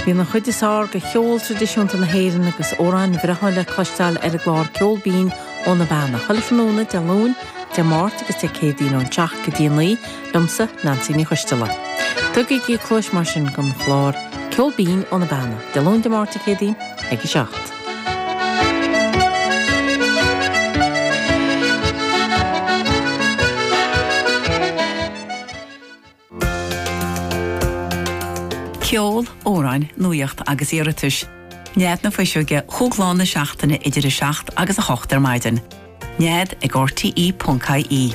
Bíonn an chuid is fearr de cheol tradisiúnta na hÉireann agus amhráin bhreátha le cloisteáil ar an gclár Ceol Binn ó na Beanna, chuile thráthnóna Dé Luain, Dé Máirt agus Dé Céadaoin ón seacht go dtí a naoi, liomsa, Neansaí Ní Choisdealbha. Tugaigí cluas mar sin don chlár Ceol Binn ó na Beanna, Dé Luain, Dé Máirt, Dé Céadaoin ag a seacht. Ceol, amhráin, nuaíocht agus iarratais. Nead na Fuiseoige chúig lá na seachtaine idir 7 agus 8 ar maidin. Nead ag RTE.ie.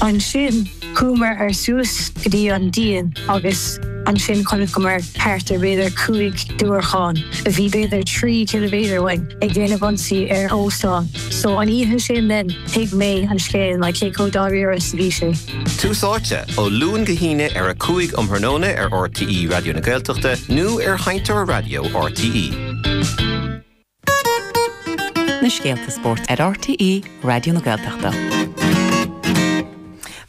Ansin, chuamar suas go dtí an díon agus ansin chonaiceamar thart ar b'fhéidir cúig diúracán, a bhí b'fhéidir trí chiliméadar uainn, ag déanamh ionsaí ar óstán. So, an oíche sin then, thuig mé an scéal, like cé chomh dáiríre is a bhí sé. Tús Áite, ó Luan go hAoine ar a 5 um thráthnóna ar rte Raidió na Gaeltachta nó ar sheinnteoir raidió rte. na scéalta spóirt ar RTÉ Raidió na Gaeltachta.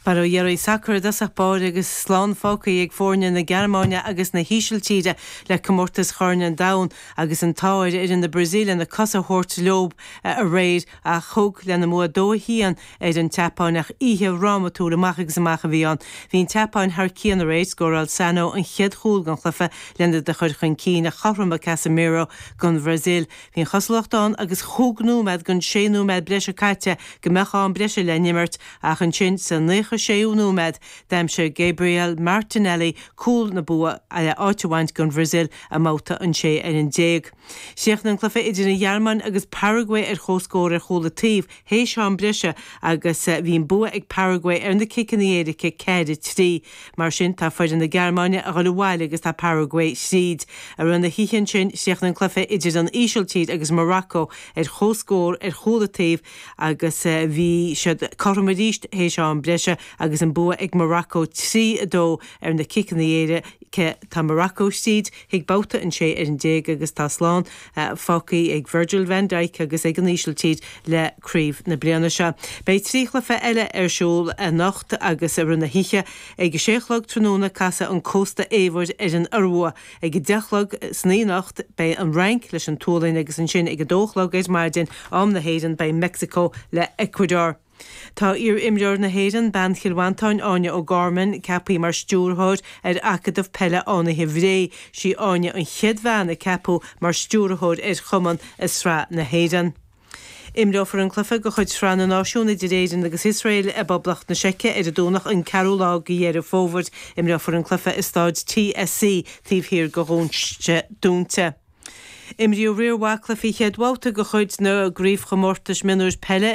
Mar a deirim sacar i dtosach báire agus slán fágtha ag foirne na Gearmáine agus na hÍsiltíre le comórtas Chorn an Domhain agus an t-ádh ar fhoireann na Brasaíle na cosa a thabhairt leo aréir tar éis a mbua 2-1 ar an tSeapáin ach oíche dhrámatúil amach agus amach a bhí ann. Bhí an tSeapáin thar cionn aréir, scóráil Sano an chéad chúl gan chluiche lena de chuir chun cinn a chothromaigh Casemiro don Bhrasaíl. Bhí an chosúlacht ann agus chúig nóiméad den sé nóiméad breise caite go mbeadh am breise le n-imirt ach ansin sa naocha séú nóiméad d'aimsigh Gabriel Martinelli cúl na bua le áit a bhaint don Bhrasaíl i mbabhta an 16. Chríochnaigh an cluiche idir an Ghearmáin agus Paragua ar chomhscór ar chúl an taobh Théis am breise agus bhí an bua ag Paraguay ar na ciceanna éirice, ceithre, trí. Mar sin, tá foireann na Gearmáine a dhul abhaile agus tá Paraguay tríd. I rith na hoíche ansin, chríochnaigh an cluiche idir an Ísiltír agus Morocco ar chomhscór ar chúl an taobh agus bhí siad cothrom arís théis am breise agus an bua ag Morocco trí, a dó ar na ciceanna éirice. Tá Morocco tríd chuig babhta an sé fhoireann déag agus tá slán. Fágtha ag Virgil van Dijk agus ag an Ísiltír le craobh na bliana seo. Beidh trí chluiche eile ar siúl anocht agus i rith na hoíche, ag a sé a chlog tráthnóna casfaidh an Cósta Eabhair ar an Iorua, ag a deich a chlog san oíche anocht beidh an Fhrainc leis an tSualainn agus ansin ag a dó a chlog ar maidin am na hÉireann beidh Meicsiceo le Ecuador. Tá iar-imreoir na hÉireann, bean Chill Mhantáin, Áine O'Gorman, ceaptha mar Stiúrthóir ar Acadamh Peile Fhánaithe Bhré. Sí Áine an chéad bhean a ceapadh mar Stiúrthóir ar chumann i Sraith na hÉireann. Imreofar an cluiche de chuid Sraith na Náisiún idir Éirinn agus Iosrael i bPoblacht na Seice ar an Domhnach an 4ú lá de Dheireadh Fómhair. Imreofar an cluiche i Staid TSC taobh thiar de dhoirse dúnta. Imríodh riar mhaith cluichí chéad bhabhta de chuid na gCraobhchomórtais Mionúir Peile